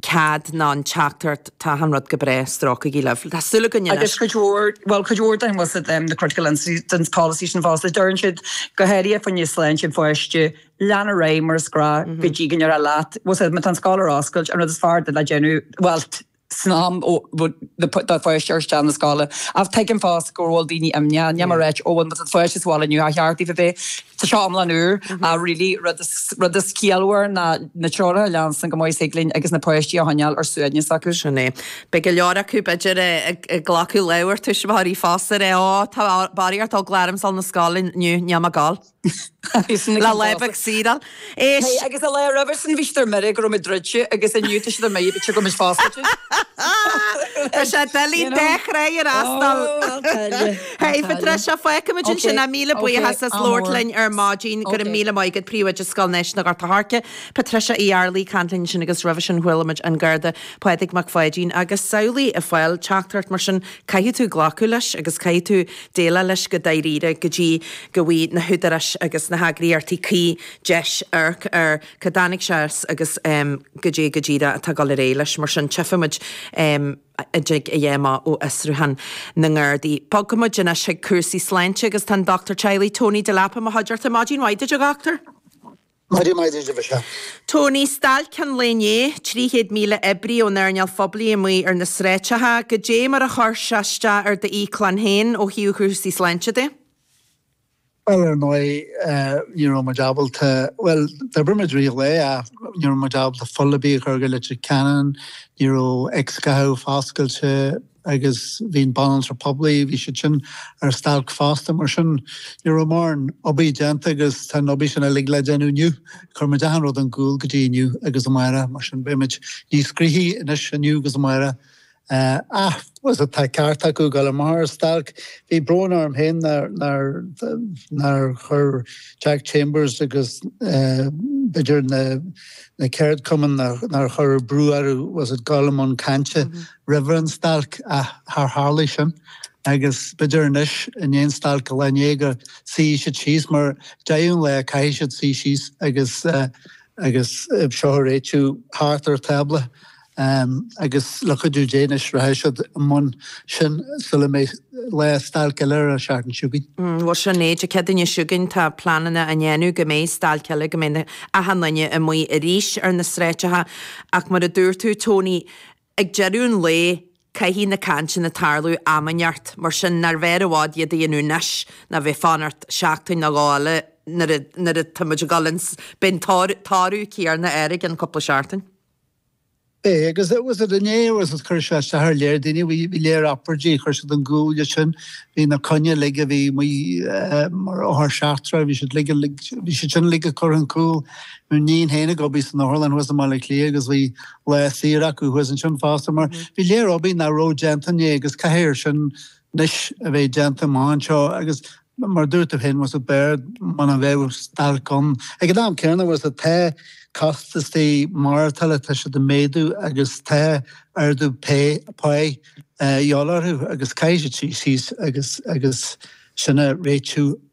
cead ná an teachtaireacht, tá achan rud go breá, stróicigí libh. Tá súil againn anois. Agus cuid mhór, bhuel, cuid mhór den, bhfuil a fhios agat, an critical incidents policy sin fosta a deireann siad go háirithe fá choinne sláinte an pháiste, lean ar aghaidh mar is gnách go dtí go ndeirtear leat, bhfuil a fhios agat, má tá an scoil ar oscailt an rud is fearr duit le déanamh bhuel san am do pháiste a chur isteach 'na scoile ach tuigim fosta go bhfuil daoine imníoch, níl mé ag ráit ó bhuel má tá do pháiste sa bhaile inniu ba cheart daoibh a bheith sa seomra úr ach really an rud is ciallmhaire ná na treoracha a leanstan chomh maith is thig linn agus na páistí a choinneáil ar suaimhneas acu. Sin é. Beidh go leor acu, b'fhéidir, ag glacadh leabhar tuismitheoirí fosta de, Ó, tá barraíocht eagla ormsa a ghabháil 'na scoile inniu, níl mé ag gabháil. Lá leapa ag Síle. Is. Hey, agus an lá roimhe sin, bhí siad ar mire go raibh muid druidte agus inniu tá siad ar mire go bhfuil muid foscailte. Tá sé doiligh an dá thrá a fhreastal. Hey, Patricia, fágfaimid ansin é, míle buíochas as labhairt linn ar maidin. Go raibh míle maith agat, Príomhoide Scoil Náisiúnta Ghort an Choirce, Patricia Uí Arlaigh, ag caint linn ansin agus roimhe sin chualaimid an Garda Pádraig Mac Pháidín agus samhlaigh ag fáil teachtaireacht mar sin, caithfidh tú glacadh leis agus caithfidh tú. déileáil leis go dáiríre go dtí go bhfaighidh na húdaráis agus na heagraíochtaí cuí deis amharc ar cá dtáinig sé as agus cad é go díreach atá ag dul ar aghaidh leis. Mar sin, tchífimid an dtig a dhath amach ó fhiosrúchán na nGardaí. Bogfaimid anois chuig cúrsaí sláinte agus tá an Dochtúir Teaghlaigh Tony Delap i mo chuideachta. Maidin mhaith duit, a Dhochtúir! Maidin mhaith duit, a Mhichelle. Tony, Stailc an lae inné, 300,000 oibrí ón earnáil phoiblí amuigh ar na sráideacha. Goidé mar a chuir sé isteach ar do íoclann féin ó thaobh chúrsaí sláinte de? Bhuel, ar ndóigh, ní raibh muid ábalta, bhuel, d'oibir muid ar aghaidh ach ní raibh muid ábalta fuil ar bith a chur go Leitir Ceanainn, ní raibh x-ghathaí foscailte, agus bhí na banaltraí poiblí, bhí siad sin ar stailc fosta, mar sin ní raibh mórán obair déanta agus tá an obair sin uilig le déanamh inniu. Chuir muid achan rud ar gcúl go dtí inniu agus amárach, mar sin beidh muid níos gnoithí anois inniu agus amárach ach, sea, tá ceart acu dul amach ar stailc. Bhí brón orm féin nár, nár, nár chuir Jack Chambers agus b'fhéidir na, na ceardchumainn nár chuir brú orthu, bhfuil a fhios agat, dul i mbun cainte roimhe an stailc ach char tharlaigh sin agus b'fhéidir anois i ndiaidh an stailc an lae inné go suífidh siad síos mar deireadh an lae caithfidh siad suí síos agus agus seo a réitiú thart ar tábla agus le cuidiú Dé anois rachaidh siad i mbun sin sula mbeidh lá stailc eile ar an tseachtain seo chugainn. Bhuel sin é, Dé Céadaoin seo chugainn tá pleananna á ndéanamh go mbeidh stailc eile go mbeidh achan duine amuigh arís ar na sráideacha ach mar a dúirt tú Tony Ag deireadh an lae, caithfidh na cainteanna tarlú am inteacht, mar sin nárbh fhearr i bhfad iad a dhéanamh anois ná bheith ag fanacht seachtain nó dhó eile nuair atá muid ag dul is beidh an toradh céarna air i gcionn cúpla seachtain. Aye, agus inné, agus chuir sé isteach ar léar daoine, bhí léar obráidí, chuir siad ar gcúl leis sin, bhí na coinní uilig, a bhí amuigh mar othar seachtracha, bhí siad uilig, bhí siad sin uilig curtha ar gcúl, tá mo níon féin ag obair san otharlann thuas i mBaile Átha Cliath agus bhí lá saor acu thuas ansin fosta mar bhí léar obair nach raibh déanta inné agus caithfear sin anois a bheith déanta amach anseo agus mar a dúirt tú féin bhfuil a fhios agat b'fhearr muna bheadh stailc ann. Ag an am céanna bhfuil a fhios agat tá costaisí maireachtála tá siad ag méadú agus tá ardú pá páighe a dhíobháil orthu agus caithfidh siad suí síos agus sin a réitiú.